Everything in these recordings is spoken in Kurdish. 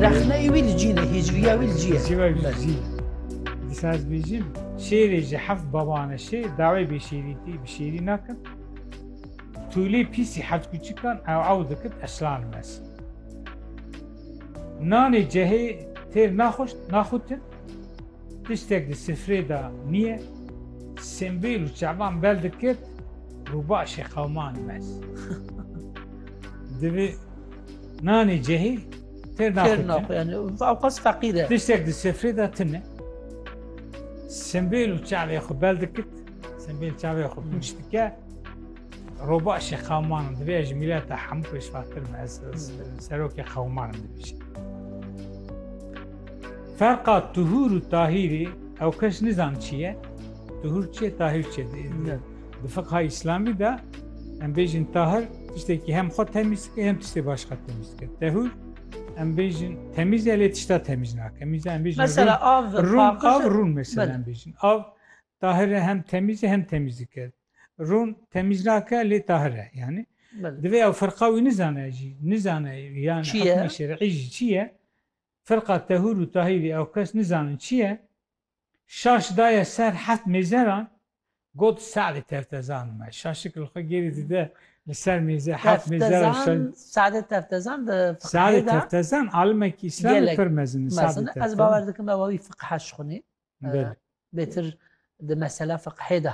Rexneyê wî li cî ne, hîcviya wî li cî ye. Hîcviya wî li cî ye. Dîsa ez bêjim, şêrê ji heft baban e şê, dawê bêşêrîtî bi şêrî nakin. Tûlê pîsî heft kûçikan ew ew dikit eslan mes. Nanê cehê têr naxweş naxutin, tiştek di sifrê de niye, Simbêl û Çaban bel dikit rûbaşê qewiman mes. Divê nanê cehî têr naxwe yani avqas feqîr e. Tiştek di sefrê de tine. Sembêl û çavê xwe bel dikit. Sembêl çavê xwe pûç dike. Roba şê qewman divê ji mîleta hemû pêşvatir me ez serokê qewman dibêje. Ferqa tuhûr û tahîrî ew kes nizan çi ye. Tuhûr çi ye tahîr çi ye. Di fiqha îslamî de Em bêjin tahir tiştekî hem xwe temîz dike hem tiştê başka temîz dike. Tehûr em bêjin temîz e lê tişta temîz nake. Mîza em bêjin Mesela av rûn av rûn mesela em bêjin. Av tahir e hem temîz e hem temîz dike. Rûn temîz nake lê tahir e yani. Divê ew firqa wî nizane jî nizane yan hikmê şerî jî çi ye? Firqa tehûr û tahîrî ew kes nizanin çi ye? Şaş daye ser heft mêzeran, got Se'dê Teftezan me. Şaşik li xwe gêrî dide li ser mêze heft mêzeran şen. Se'dê Teftezan di fiqhê de. Se'dê Teftezan alimekî îslamî pir mezin e. Se'dê Teftezan. Ez bawer dikim ew wî fiqh haj xwinî. Bêtir di mesela fiqhê de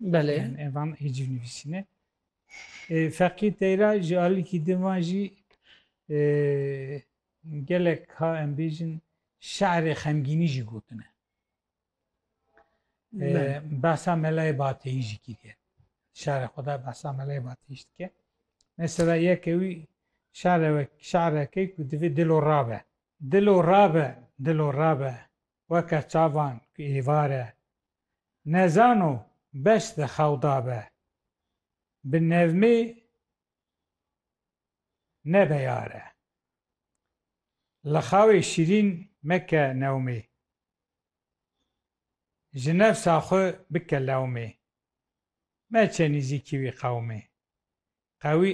Belê. Yani evan hiciv nivîsîne. E, Feqî teyra ji alikî di van jî e, gelek ha em bêjin şerê xemgînî jî gotine. E, behsa melayê bateyî jî kiriye. Şerê xwe de behsa melayê bateyî jî dike. Mesela yeke wî şereke ku divê dilo rabe. Dilo rabe, dilo rabe. weke çavan ku êvar e. Nezano beş di xew da be. Bi nevmê nebe yare. Li xewê şîrîn meke newmê. Ji nefsa xwe bike lewmê. Meçe nîzîkî wî qewmê. Qewî